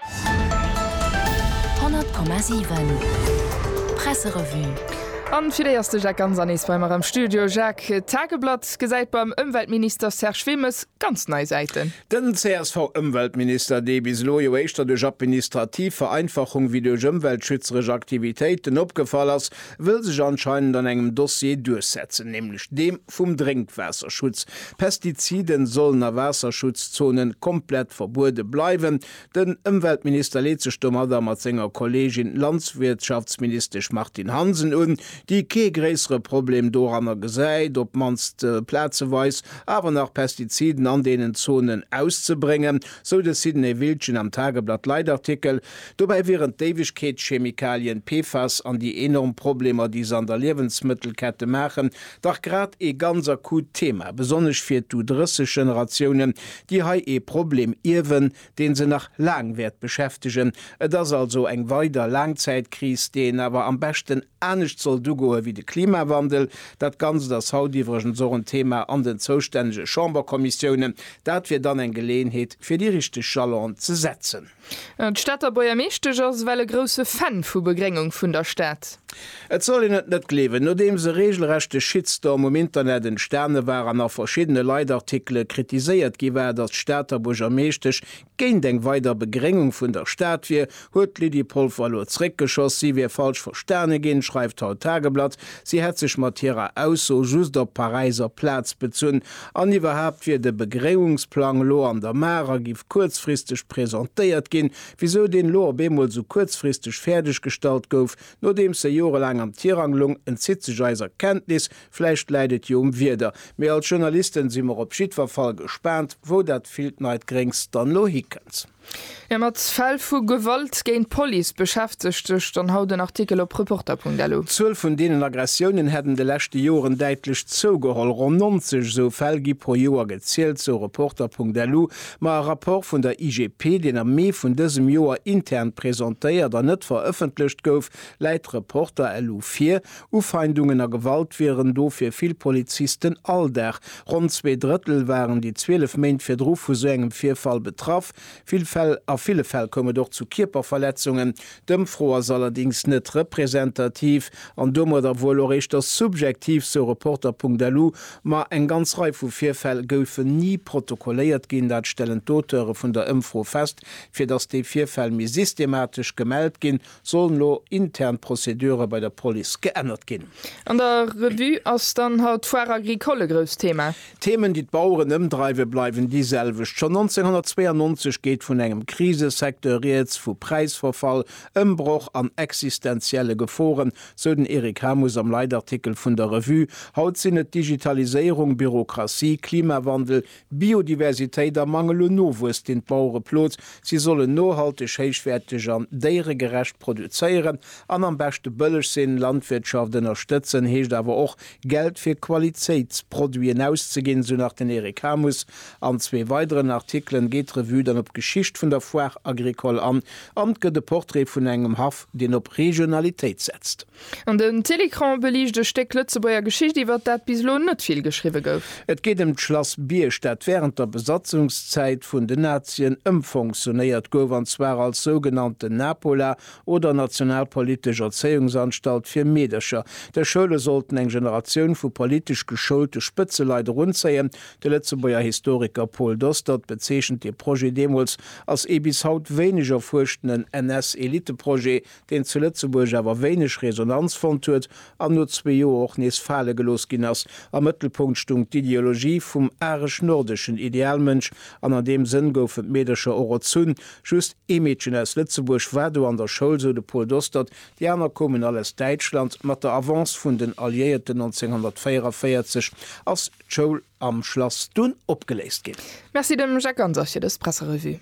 100,7 Presserevue Am Filet ass de Jacques Ansanis bei mer am Studio. Jacques, d'Tageblatt gesäit beim Ëmweltminister Serge Wilmes ganz nei Säiten. Den CSV-Ëmweltminister, dee bis elo jo éischter duerch administrativ Vereinfachung wéi duerch ëmweltschützeresch Aktivitéiten opgefall ass, wëll sech anscheinend an engem Dossier duerchsetzen, nämlech deem, vum Drénkwaasserschutz. Pestiziden sollen a Waasserschutzone komplett verbuede bleiwen. Den Ëmweltminister leet sech domadder mat senger Kolleegin Landwirtschaftsministesch Martine Hansen un, déi kee gréissere Problem doranner gesäit, op d'mannst plazeweis awer nach Pestiziden an deenen Zonen auszebréngen, sou de Sidney Wiltgen am Tageblatt Leitartikel. Dobäi wieren d'Éiwegkeetschemikalien PFAS an déi enorm Problemer, déi se an der Liewensmëttelkette maachen, Dach grad ee ganz akut Thema, besonnesch fir d'U 30 Generatiounen, déi hei ee Problem ierwen, dee se nach laang wäert beschäftegen. Et ass also eng weider Laangzäitkris, déi een awer am beschten anescht sollt ugoe wéi de Klimawandel. Dat Ganzt ass haut iwwregens och en Thema an den zoustännege Chamberkommissiounen. Dat wier dann eng Geleeënheet, fir déi richteg Jalone ze setzen. D'Stater Buergermeeschtesch ass ewell e grousse Fan vu Begréngung vun der Stad. Et soll een et net gleewen, nodeems e reegelrechte Shitstorm um Internet entstane war an a verschiddene Leitartikele kritiséiert gi war, datt d'Stater Buergermeeschtesch géint eng weider Begréngung vun der Stad wier, huet d'Lydie Polfer elo zréckgeschoss. Si wier falsch verstane ginn, schreift haut d'Tageblatt. Si hätt sech mat hirer Ausso just op d'Paräiser Plaz bezunn. An iwwerhaapt wier de Begréungsplang elo an der Maach a giff kuerzfristeg presentéiert ginn. Wisou deen elo op eemol esou kuerzfristeg fäerdeg gestallt gouf, nodeems e jorelaang am Tirang lung, entzitt sech eiser Kenntnis. Vläicht läit et jo um Wieder, mee als Journalisten si mer op jiddwer Fall gespaant, wou dat villt neit Gréngs dann elo hikënnt. Ja mat Fäll vu Gewalt géint d'Police beschäftegt sech dann haut en Artikel op Reporter.lu. D'Zuel vun deenen Aggressiounen hätt an de leschte Joren däitlech zougeholl. Ronn 90 esou Fäll gi pro Joer gezielt, sou Reporter.lu. Ma e Rapport vun der IGP, deen am Mee vun dësem Joer intern presentéiert an net verëffentlecht gouf, läit Reporter.lu vir, Ufeindungen a Gewalt wieren do fir vill Polizisten Alldag. Ronn zwee Drëttel waren déi 12 Méint virdru vu sou engem Virfall betraff. Vill Fäll, a ville Fäll koum et och zu Kierperverletzungen. D'Ëmfro ass allerdéngs net representativ an domadder wuel och éischter subjektiv, sou Reporter Punkt Alu. Ma eng ganz Rei vu Virfäll goufen ni protokolléiert ginn. Dat stellen d'Auteure vun der Ëmfro fest. Fir datt déi Virfäll méi systematesch gemellt ginn, Sollen lo intern Procédure bei der Police geännert ginn? An der Revue ass dann haut d'Foire Agricole e grousst Thema. D'Themen, déi d'Baueren ëmdreiwen, bleiwen déi selwecht. Schonn 1992 geet vun engem Krisesecteur rieds, vu Präisverfall, Ëmbroch an existenzielle Geforen, sou den Eric Hamus am Leitartikel vun der Revue. Haut sinn et Digitaliséierung, Bürokratie, Klimawandel, Biodiversitéit a Mangel un Nowuess, deen d'Bauere plot. Si sollen nohalteg, héichwäerteg an déieregerecht produzéieren an am beschte bëlleg sinn. Landwirtschaft ënnerstëtzen heescht awer och, Geld fir Qualitéitsproduiten auszeginn, esou nach den Eric Hammes. An zwee weideren Artikelen geet d'Revue dann op d'Geschicht vun der Foire agricole an an gëtt e Portrait vun engem Haff, deen op Regionalitéit setzt. An den Télécran beliicht e Stéck Lëtzebuerger Geschicht, iwwert dat bis elo net vill geschriwwe gouf. Et geet ëm d'Schlass Bierg, dat wärend der Besatzungszäit vun den Nazien ëmfonctionnéiert gouf, an zwar als sougenannten Napola oder nationalpolitesch Erzéiungsanstalt fir Meedercher. Des Schoule sollten eng Generatioun vu politesch geschoulte Spëtzeleit erunzéien. De Lëtzebuerger Historiker Paul Dostert bezeechent dee Projet deemools als ee bis haut wéineg erfuerschtenen NS-Eliteprojet. deen zu Lëtzebuerg awer wéineg Resonanz fonnt huet an no zwee Joer och nees fale gelooss ginn ass. Am Mëttelpunkt stung d'Ideologie vum aresch-nordeschen Idealmënsch an an deem Sënn goufen d'Meedercher och erzunn. Just ee Meedchen aus Lëtzebuerg war do an der Schoul, sou de Paul Dostert, déi aner koumen all aus Däitschland. Mat der Avance vun den Alliéierten 1944 ass d'Schoul am Schlass dunn opgeléist ginn. Merci dem Jacques Ganser fir dës Presserevue.